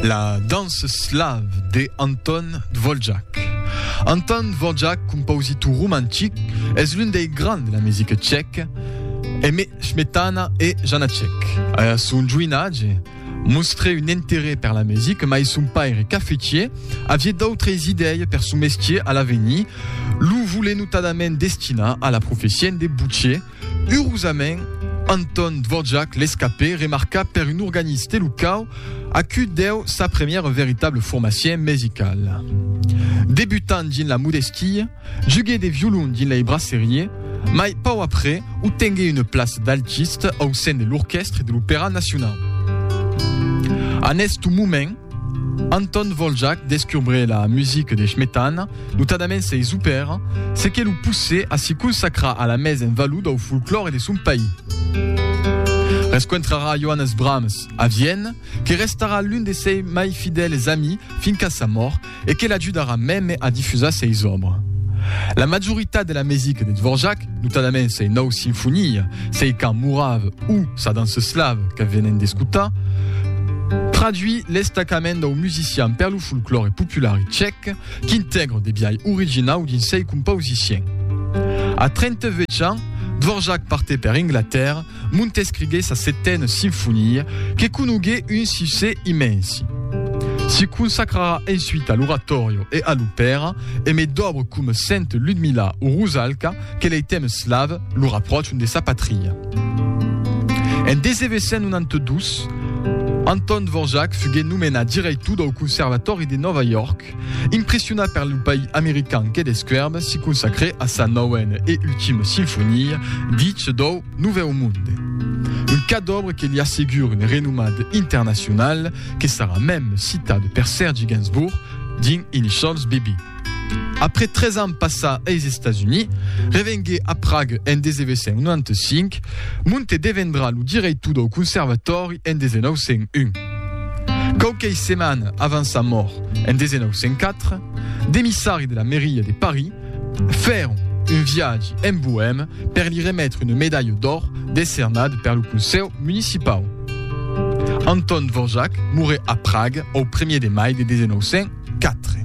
La danse slave de Anton Dvorak. Anton Dvorak, compositor romantic, es l'un dei grands de la musica tcheca, Aimé Smetana e Janacek. A son joinatge, mostrè un interès per la musica, mai son paire cafetier aviá d'autres idèi per son mestier a l'avenir, lo volent notadament destinar a la profession de butcher, Urosament, Anton Dvorak l'escapè remarca per un organiste locau a cui deu sa premiera veritable formacion mesicala. Debutant dins la modestia, juguè de violon dins lei brasseriè, mai pauc après otenguè una plaça d'altist au sen de l'orquèstre de l'Opèra Nacionau. En èstu moment, Anton Dvoljak descubre la music de Shmetana, notadament sei zupèra, se que lo pousse a si consacrar a la mes en valor dau folclòre de son país. Rescontrarà Johannes Brahms a Vienne, que restarà l'un de sei mai fidèles amis fin qu'a sa mòrt, e que l'ajudarà mème a difusar seis òbra. La majoritat de la mesica de Dvorak, notadament sei nòu sinfonia, sei cant morav o sa dança eslav que venem d'escotar, traduí l'estacament dau musician per lo folclòre popular tchèc qu'intègra de biais originau dins sei compausiciens. A 38 ans, Dvorak partè per Inglatèrra Montescrigué sa setena sinfonia, que conogué un succès immensi. Se consacrarà ensuite a l'oratòrio e a l'opèra, emé d'òbres coma Sainte Ludmilla o Rusalka que lei tèmes slaves lo rapròchan de sa patria. En 1892, Anton Dvorak fugué nomenat dirèitor dau Conservatori de Nòva York, York. Impressionat per lo país american que descuèrbe, si consacrè a sa nauena e ultima sinfonia, Ditge dau Novèu Monde. Un cas d'òbra que li assegure un renomat internacional que sarà mèm citat per Sergi Gainsbourg dins Initials BB. Après 3 ans passà eis Estats Units, revenguè a Prague en 1995, Monte devendrà lo director dau Conservatòri en 1901. Quauquei setmana avant sa mòrt en 1904, d'emissari de la Mairia de Paris fèron un viatge en Boème per li remetre una medalha d'òr decernada per lo Consèu Municipau. Anton Dvorak moré a Praga au 1er de mai de 1904.